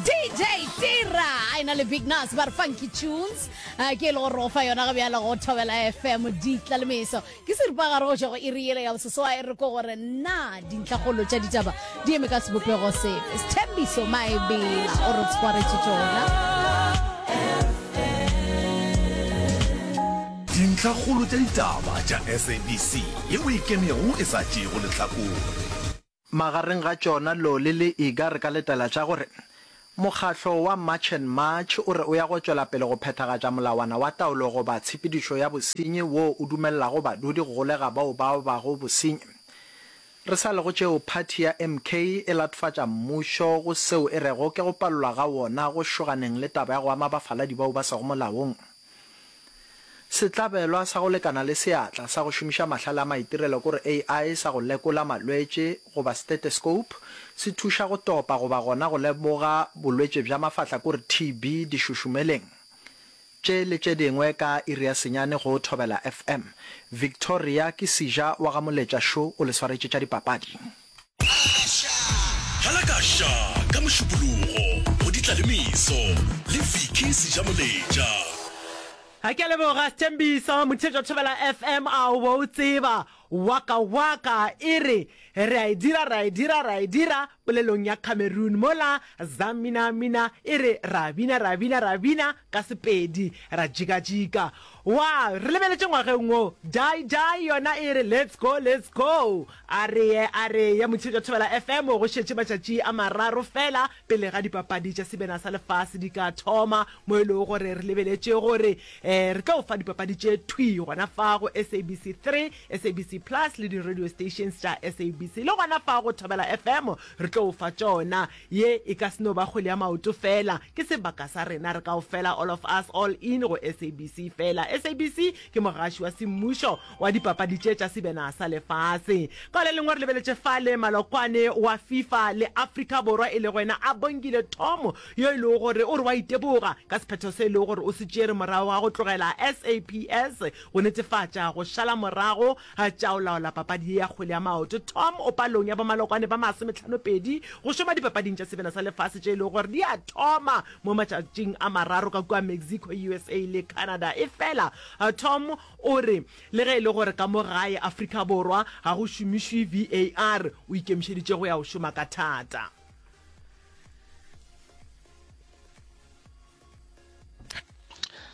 DJ Tira a ena le Big Nas ba re funky tunes a ke e le go rofa yona ga bjalo go thobela FM ditla le meso ke seripagare go šego e re yele ya bososo a e re ko gore na dintlhagolo tša ditaba di eme ka sebopego sepe sethembiso maebela o re tshwaretše tšona dintlhakgolo tša ditaba tša sabc ye o ikemego e sa tšeego lehlakore Magareng ga tšona Loli le Iga re ka letela tša gore, Mokgahlo wa March and March o re o ya go tšwela pele go phethagatša molawana wa taolo goba tshepedišo ya bosenyi woo o dumelelago badudi go golega bao ba bago bosenyi. Re sa le go tšeo, phathi ya MK e latofatša mmušo go seo e rego ke go palelwa ga wona go šoganeng le taba ya go ama bafaladi bao ba sego molaong. Sehlabelwa sa go lekana le seatla sa go šomiša mahlale a maitirelo kore AI sa go lekola malwetše goba stethescope se thuša go topa goba gona go lemoga bolwetše bja mafahla kore TB dišošumeleng tše le tše dingwe ka iri ya senyane go Thobela FM. Victoria ke Sija wa ga Moletša Šo o le swaretše tša dipapadi. Dlala ka Sha ka Mošupologo go di tla le meso le Vicky Sejamoletša. Ha ke a leboga Sthembiso Motheetšo Thobela FM a o bo o tseba Waka Waka e re Re a e dira ra e dira ra e dira Polelong ya Cameroon mola Za Mina Mina e re Ra bina ra bina ra bina ka Sepedi ra jika jika Wa, re lebeletše ngwageng wo. Dai, Dai yona e re, Let's go, let's go. A re ye, a re ye, Motshika Thobela FM, go šetše matšatši a mararo feela pele ga dipapadi tša Sebena sa Lefase di ka thoma, mo e lego gore re lebeletše gore um re tlo o fa dipapadi tše thwi gona fa go SABC 3, SABC Plus le di-radio stations tša SABC. Le gona fa go Thobela FM re tlo o fa tšona. Ye e ka se no ba kgwele ya maoto fela, ke sebaka sa rena re kaofela, all of us, all in go SABC fela. SABC ke mogaši wa semmušo wa dipapadi tše tša sebena sa lefase. Ka le lengwe re lebeletše fale malokwane wa FIFA le Afrika Borwa e lego yena Abongile Thomo yo e lego gore o re wa iteboga ka sephetho se e lego gore o se tšere morago ga go tlogela SAPS go netefatša go šala morago A tša o laola papadi ye ya kgwele ya maoto, Tom, o palong ya bomalokwane ba masometlhanopedi go šoma Dipapading tša Sebele sa Lefase tše e lego gore di a thoma mo matšatšing a mararo ka kua Mexico, USA le Canada. Efela Tom o re le ge e le gore ka mo gae Afrika Borwa ga go šomišwe VAR, o ikemišeditše go ya go šoma ka thata.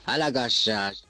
Halakasha.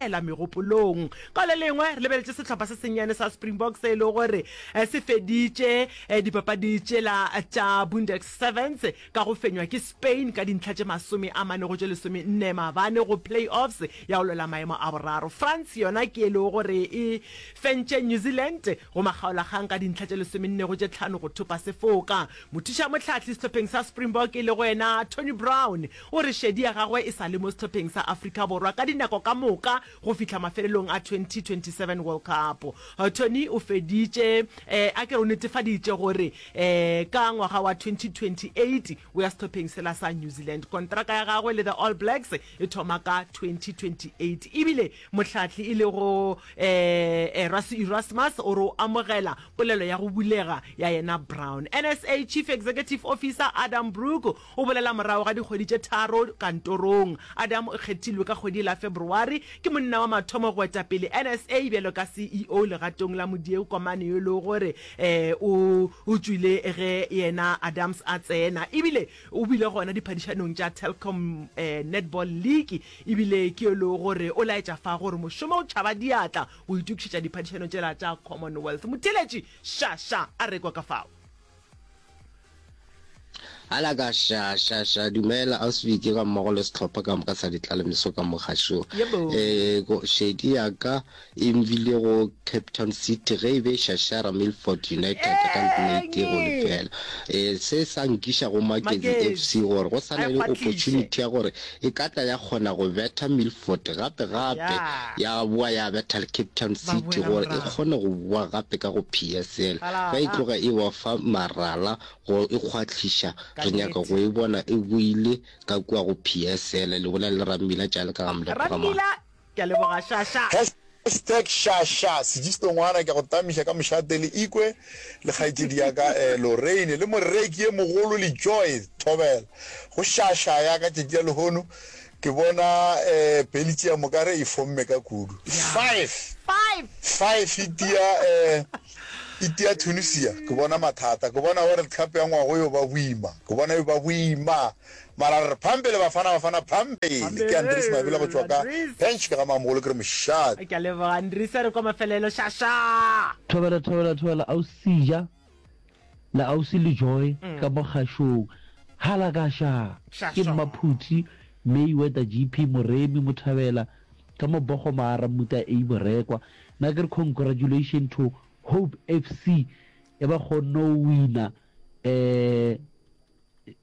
ela megopolong. Ka le lengwe, re lebeletše sehlopha se sennyane sa Springbok se e lego gore se feditše dipapadi tšela tša Bundex Sevens ka go fenywa ke Spain ka dintlha tše masome a mane go tše lesomenne maabane go play-offs ya go lwela maemo a boraro. France yona ke e lego gore e fentše New Zealand Go makgaolakgang ka dintlha tše lesomennego tše tlhano go thopa sefoka, mothušamohlahli sehlopheng sa Springbok e lego yena Tony Brown o re šedi ya gagwe e sa le mo sehlopheng sa Afrika Borwa ka dinako ka moka go fihla mafelelong a 2027 World Cup. Tony o feditše um a ke re o netefaditše gore um ka ngwaga wa 2028 o ya sehlopheng sela sa New Zealand. Kontraka ya gagwe le the All Blacks e thoma ka 2028 ebile Mohlahli e lego Erasmus Erasmus o re o amogela polelo ya go bulega ya yena Brown. NSA Chief Executive Officer Adam Brook o bolela morago ga dikgwedi tše tharo kantorong. Adam o kgethilwe ka kgwedi la February ke monna wa mathomo go eta pele NSA bjalo ka CEO legatong la modieu komane yo e lego gore o o tšwile ge yena Adams a tsena ebile o bile gona diphadišanong tša Telkom Netball League E bile ke e le gore o laetša fa gore mošomo o tšhaba diatla go itokišetša diphadišano tšela tša Commonwealth, motheeletši Sha Sha a rekwa ka fao. Alaka Sha Sha Sha, dumela Ausi Vicky gammogo le sehlopha ka moka sa ditlalemiso ka mo gašong. Yebo. E, ko, šedi ya ka. e nbile go Cape Town City ge e be e šašara Milford United ka nete go lefela. E, se sa nkiša go Magezi FC gore go sa na le opportunity ya gore e ka tla ya kgona go betha Milford gape gape ya boa ya betha le Cape Town City gore e kgone go boa gape ka go PSL. Ba e tloga e ba fa marala go e kgwahliša. Re nyaka go e bona e boile ka kua go PSL, le bolela le Rammila Tšale ka ga Mlepo Gamane. Ke a leboga Shasha. Hashtag Shasha Sigisto ngwana ke a go tamiša ka mošate le Ikwe le kgaetšedi ya ka Lorraine le moreki ye mogolo le Joy Thobela go Shasha ya ka tšatši la lehono ke bona Belgium o ka re e fomme ka kudu five five e tia e tia Tunisia ke bona mathata ke bona World Cup ya ngwago yo ba boima ke bona yo ba boima. Mara re re phampe le Bafana Bafana phampe ke Andries Mabila go tšwa ka Bench ke ga Mamogolo ke re mošate. Ke a leboga Andries a re kwa mafelelo šaša. Thobela thobela thobela ausi ja le ausi le joy ka mo kgašong hala ka xa ke mma phuthi may weather GP moremi mo thabela ka mo bogo maara mmuta a borekwa na ke re congratulation to hope FC e ba kgonno wina eh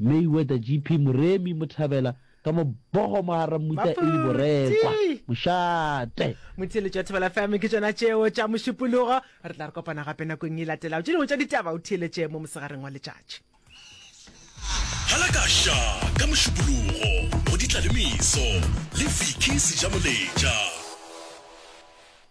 Mayweather GP Moremi Mothabela ka mobogo mogara mmuta e le borekwa mošate. Motheeletši wa Thobela FM ke tšona tšeo tša mošupologo. Re tla re kopana gape nakong e latelago tše dingwe tša ditaba o theeletše mo mosegareng wa letšatši. Hala ka ša ka mošupologo go ditla le meso le Vicky Sejamoletša.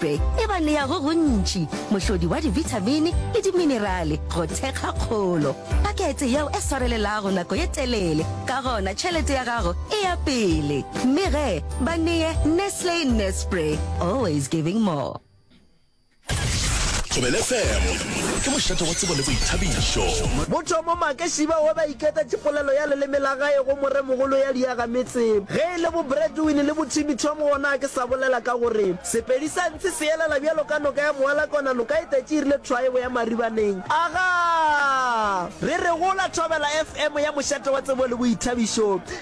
Be e ba nea go gontši, mohlodi wa dibithamini le diminerale go thekga kgolo. Pakete yeo e swarelelago nako ye telele, ka gona tšhelete ya gago e ya pele. Mme ge ba neye Nestle Nespre, always giving more. Thobela FM. Ke mošate wa tsebo le boithabišo. Mothomo Make Shiba we ba iketetše polelo ya leleme la gae go moremogolo ya diaga metse. Ge e le bo Bradwin le bo Timmy Tom gona a ke sa bolela ka gore Sepedi sa ntshi se elela bjalo ka noka ya moala kona noka e tetše e rile thwaebo ya maribaneng. Agaa! Re re gola thobela FM ya mošate wa tsebo le boithabišo.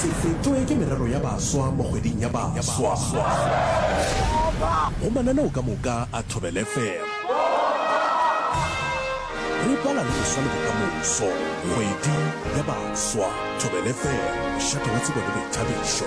Se fetšwe ke merero ya baswa mo kgweding ya baswa go mananeo ka moka a Thobela FM. Re bala le boswa le bokamoso, kgwedi ya baswa, Thobela FM, mošate wa tsebo le boithabišo.